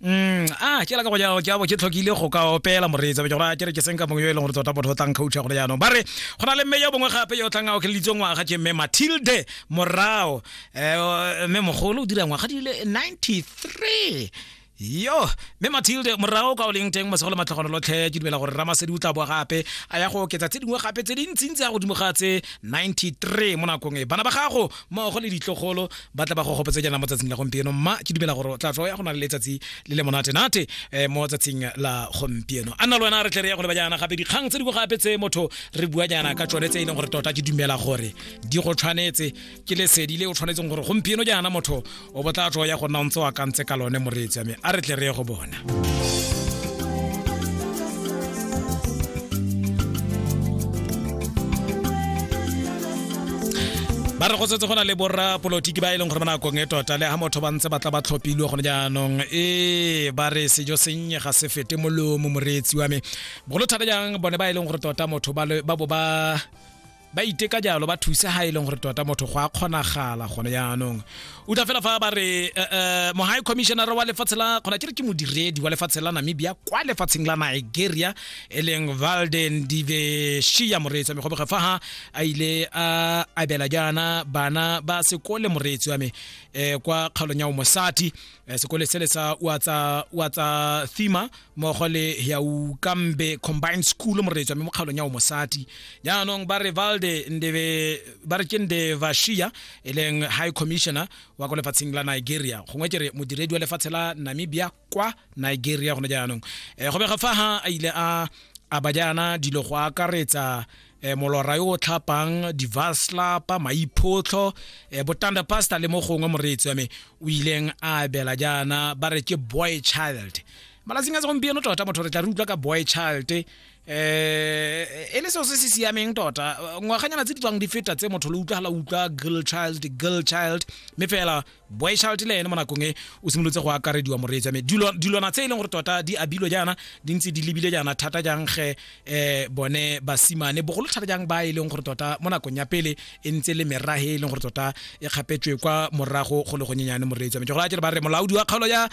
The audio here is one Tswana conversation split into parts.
Mm, ah ke la ka go jalo jabo ke tlhokile go ka opela moreetsa ke gore ke re ke senka mongwe yo e leng gore tota botho tlang coach gore jaanong ba re go na le mme yo bongwe gape yo tlang a okeleditswe ngwaga ke mme Matilde Morao eh mme mogolo o dira ngwaga di le 93 yo mme matilde morago ka o leng teng masego le matlhagano lotlhe ke dumela gore ramasedi o tla boa gape a ya go oketsa tse dingwe gape tse dintsintsi ya godimo ga tse 93 mo nakong e bana ba gago mmogo le ditlogolo ba tla ba go gopetse jaana mo tsatsing la gompieno mma ke dumela gore tla tlo ya go na le letsatsi le le monate nate eh, mo tsatsing la gompieno a nna le wena re tle re ya go leba jaana gape dikgang tse di go gape tse motho re bua jaana ka tsone tse e leng gore tota ke dumela gore di go tshwanetse ke lesedi le o tshwanetseng gore gompieno jaana motho o botla tlo ya go nna o ntse o akantse ka lone moreetsi ame a re tle re ye go bona ba re go setse go na le borra polotiki ba e leng gore ba nakong e tota le ga motho ba ntse ba tla ba tlhophilwe gone jaanong e ba re sejo sennye ga se fete molomo moreetsi wa me bogolo thata jang bone ba e leng gore tota motho ba bo ba ba iteka jalo ba thusa ha e leng gore tota motho go a kgonagala gone jaanong o tla fela fa ba re eh, eh, mohai commissioner wa lefatshe la kgona ke re ke modiredi wa lefatshe la namibia kwa lefatsheng la nigeria e leng valden diveshia moreetsi wa me goboge fa ha a ile a abela jaana bana ba sekole moreetsi wa me um kwa kgaolong ya o mosati eh, sekole sele sa uatsa thima mmogo le yaukambe combined school moreetswa mme mo kgaolong ya o mosadi jaanong ba re valde ndebe ba re ke ndevashia e leng high commissioner wa ko lefatsheng la nigeria gongwe ke re modiredi wa lefatshe la namibia kwa nigeria gone jaanong um go bega fa ha a ile a a ba jaana dilo go akaretsa eh, molora yo o tlhapang divaslapa maiphotlho eh, botanda pastor le mo gongwe moreetsi wa me o ileng a abela jaana ba re ke boy child malatsing a segompieno tota motho re tla re utlwa ka boy child um e le seo se se siameng tota ngwaganyana tse di tswang di feta tse motho le utlwagala utlwa girl child girl child mme fela boy child le ene mo nakong e o simolotse go akarediwa moreetsi ame dilwana tse e leng gore tota di abilwe jaana di ntse di lebile jaana thata jang ge um bone basimane bogolo thata jang ba e leng gore tota mo nakong ya pele e ntse le merage e leng gore tota e kgapetswe kwa morago go le gonyenyane moreetsi ame gore a jere ba re molaodi wa kgaolo ya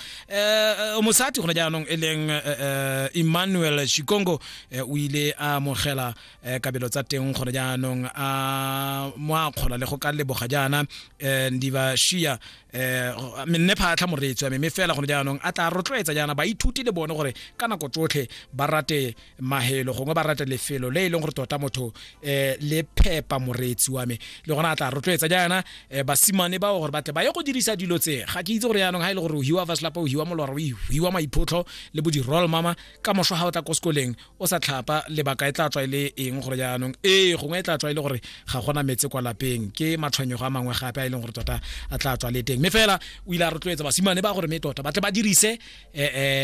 um mosati gone jaanong e leng um emmanuel shikongo o ile a mogela um kabelo tsa teng gone jaanong a mo a kgola le go ka leboga jaana um diba shia um menne phatlha moreetswa mme fela gone jaanong a tla rotloetsa jaana baithuti le bone gore ka nako tsotlhe ba rate mahelo gongwe ba rate lefelo le e leng gore tota motho um le phepa moreetsi wa me le gona a tla rotloetsa jaana um basimane bao gore batle ba ye go dirisa dilo tse ga ke itse gore jaanong ga e le gore o hiwa fa selapa o hiwa molora o hiwa maiphotlho le bo di-roll mama ka moso ga o tla ko sekoleng o sa tlhapa lebaka e tla tswa e le eng gore jaanong ee gongwe e tla tswa e le gore ga gona metse kwa lapeng ke matshwenyego a mangwe gape a e leng gore tota a tla tswa le teng mme fela o ile a rotloetsa basimane ba gore mme tota ba tle ba dirise um